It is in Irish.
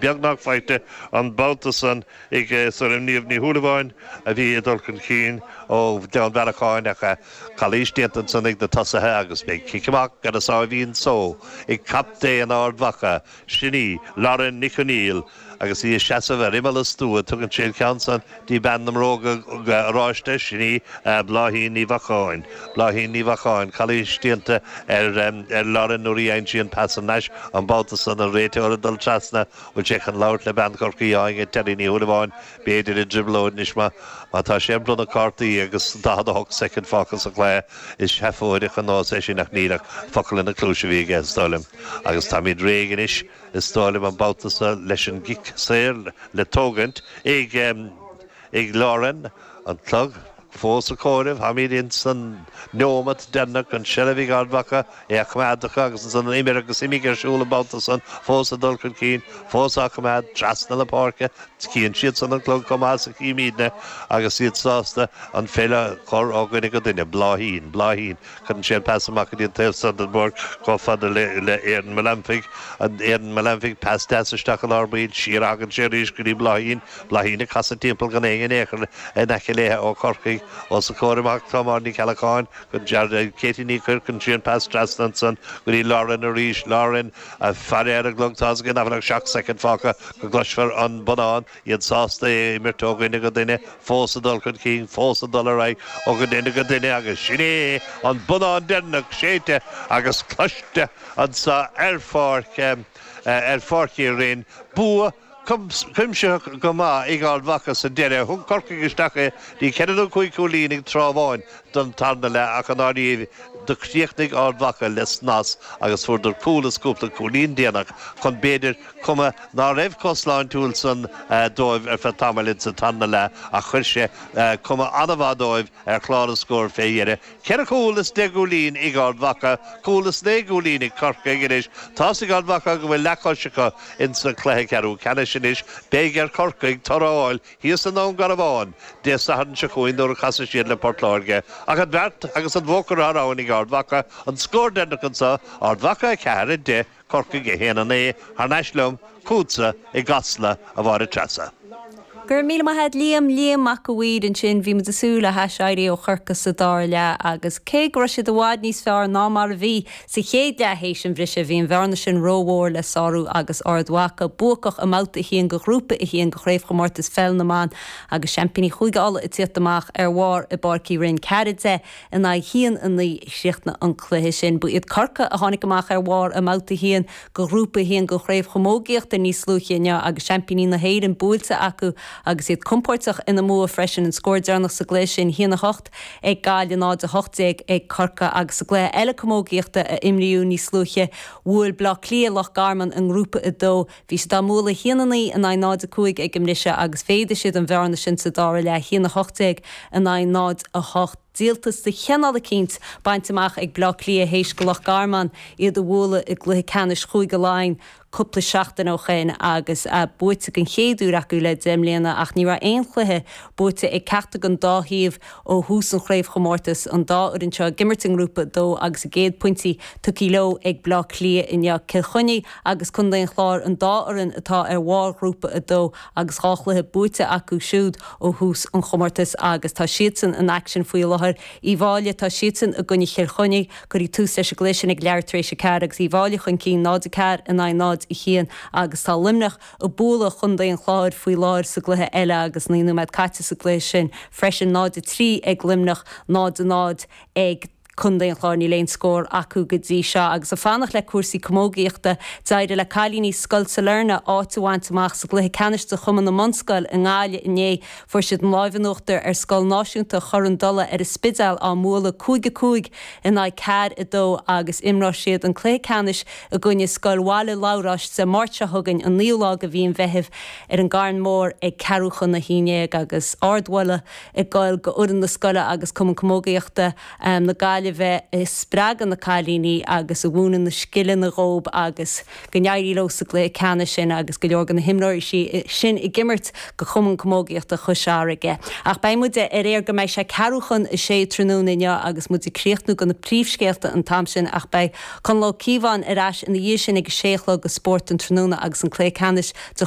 beagnach faighte an babhta san ag foireann Niamh Ní Shúilleabháin a bhí ag dul chun cinn ó Ghleann Bhearacháin ach calaois déanta ansan ag na tosaithe agus beidh cic amach ar a sáimhín só ag captaen Ard Mhacha, sin í Lauren Nic Conmhaoil agus í ag seasamh ar imeall an stua tugann sí an ceann san dtí bean na mbróga oráiste, sin í Bláithín Ní Mhacáin. Bláithín Ní Mhacáin, calaois déanta ar Lauren nuair a dhein sí an pas thar n-ais an babhta san, an réiteoir ag dul trasna, bhfuil sé chun labhairt le bean Chorcaí Áine Terry Ní Shúilleabháin, b'fhéidir i dtrioblóid anois má tá sé ag bronnadh cártaí agus 48 soicind fágtha sa chluiche, is seafóideach an nós é sin ach níl ach focal ina cluais a bhí aige is dóigh liom agus táimid réidh anois. Is dóigh liom an babhta seo leis an gcic saor le tógaint ag Lauren. An clog fós ag comhaireamh. Táimid ins an neomat deireanach. An seilbh ag Ard Mhacha. É á choimeád acu agus ansan an imir agus imigh ar siúl an babhta san. Fós ag dul chun cinn. Fós á choimeád trasna na páirce. Cíonn siadsan an clog chomh maith is a chímídne agus iad sásta an pheil a chur ó dhuine go duine. Bláithín. Bláithín. Cuireann sí an pas amach go dtí an taobh so den bpáirc chomh fada le Erin Melanophy. Erin Melanophy, pas deas isteach i lár baill, siar a thagann sé arís go dtí Bláithín. Bláithín ag casadh timpeall gan éinne in aon chor in aice léithe ó Chorcaigh. Os a comhair amach atá Máire Ní Cheallacháin. Katie Ní Coirr, cuireann sí an pas trasna ansan go dtí Lauren arís. Lauren, ag faire ar an gclog, tá's aici nach bhfuil ach seacht soicind fágtha go gcloisfear an bonnán. iad sásta é a imirt ó dhuine go duine, fós ag dul chun cinn, fós ag dul ar aghaidh ó dhuine go duine agus sin é an bonnán deireanach séidte agus cloiste anseo ar pháirc, ar Pháirc Uí Rinn. Bua cuimsitheach go maith ag Ard Mhacha sa deireadh. Thug Corcaigh isteach é dtí ceithre nó cúig chúilín ag tráth amháin don tarna leath ach i ndáiríre do chríochnaigh Ard Mhacha le snas agus fuaireadar cúl is cúpla cúilín déanach chun b'fhéidir cuma ná raibh chomh sláintiúil san dóibh ar feadh tamaill ins an tarna leath ach chuir sé cuma an-mhaith dóibh ar chlár an scóir fé dheireadh. Ceithre chúl is deich gcúilín ag Ard Mhacha, cúl is naoi gcúilín ag Corcaigh anois. Tá's ag Ard Mhacha go bhfuil leathchois acu ins an cluiche ceathrú ceannais anois. Beidh ar Corcaigh toradh a fháil thíos i nDún Garbhán Dé Sathairn seo chugainn nuair a chasfaidh siad le Port Láirge, ach an bheart agus an bua curtha thar abhainn ag Ard Mhacha an scór deireanach anso, Ard Mhacha 4, 10. Corcaigh a haon a naoi, thar n-ais liom chughatsa i gCasla, a Mháire Treasa? Go raibh míle maith a'd Liam, Liam Mac a' Mhaoir ansin, bhí muid ag súil le haiséirí ó Chorcaigh sa dara leath agus cé go raibh siad i bhfad níos fearr ná mar a bhí sa chéad leath théis an bhriseadh, bhí an bhearna sin rómhór le sárú agus Ard Mhacha buacach i mbabhta a haon de ghrúpa a haon de Chraobhchomórtas Pheil na mBan agus seaimpíní Chúige Uladh ag tíocht amach ar bharr i bPáirc Uí Rinn. Ceathair deich. in aghaidh 1, 9 a chríochnaigh an cluiche sin. Ba iad Corcaigh a tháinig amach ar bharr i mBabhta 1 de Ghrúpa 1 den Chraobh Chamógaíochta níos luaithe inniu agus seaimpíní na hÉireann buailte acu agus iad compóirteach ina mbua freisin. An scór deireanach sa gcluiche sin, 1, 8 ag Gaillimh 0, 18 ag Corcaigh agus i gcluiche eile camógaíochta a imríodh níos luaithe, bhuail Bleá Cliath Loch Garman i nGrúpa 2. Bhí siad á mbualadh haon a naoi in aghaidh náid a cúig ag an mbriseadh agus mhéadaigh siad an bhearna sin sa dara leath haon a hocht déag in aghaidh náid a hocht. Díoltas de chineál eicínt bainte amach ag Bleá Cliath théis go Loch Garman iad a bhualadh i gcluiche ceannais Chúige Laighean cúpla seachtain ó shin agus buaite den chéad uair acu le deich mbliana ach ní raibh aon chluiche buaite ag ceachtar den dá thaobh ó thús an chraobhchomórtais, an dá fhoireann seo ag imirt i nGrúpa 2 agus a gcéad phointí tugtha leo ag Bleá Cliath inniu. Cill Chainnigh. agus Contae an Chláir an dá fhoireann atá ar bharr Ghrúpa 2 agus dhá chluiche buaite acu siúd ó thús an chomórtais agus tá siadsan in aicsean faoi láthair. Uíbh Fháilí, tá siadsan i gcoinne Chill Chainnigh. Cuireadh tús leis an gcluiche sin ag leathuair tar éis 4 agus Uíbh Fháilí chun cinn 0, 4 in aghaidh 0, 1 agus tá Luimneach ag bualadh Chontae an Chláir faoi láthair sa gcluiche eile agus 9 nóiméad caite sa gcluiche sin freisin, 0, 3 ag Luimneach, 0, 0 ag. Contae an Chláir níl aon scór acu go dtí seo agus ag fanacht le cúrsaí camógaíochta. D'éirigh le cailíní Scoil Sailearna áit a bhaint amach sa gcluiche ceannais de Chumann na mBunscoil i nGaillimh inné. Fuair siad an láimh in uachtar ar Scoil Náisiúnta Chor an Dola ar an Spidéal á mbualadh cúig a cúig in aghaidh ceair a dó agus imreoidh siad an cluiche ceannais i gcoinne Scoil Bhaile Labhráis Dé Máirt seo chugainn an 9ú lá de mhí an Mheithimh ar an gCarn Mór ag ceathrú chun a haon dhéag agus ardmholadh ag goil go fhoireann na scoile agus Cumann Camógaíochta na Gaillimhe a spreagann na cailíní agus a mhúineann na scileanna dhóib agus go n-éirí leo sa gcluiche ceannais sin agus go leor de na himreoirí sin ag imirt go Cumann Camógaíochta Chois Fharraige. Ach beidh muid ar aer go mbeidh sé ceathrú chun a sé tráthnóna inniu agus muid ag críochnú go na príomhscéalta an t-am sin ach beidh Conall Ó Cíobháin ar ais ina dhiaidh sin ag a sé a chlog go Spórt an Tráthnóna agus an cluiche ceannais de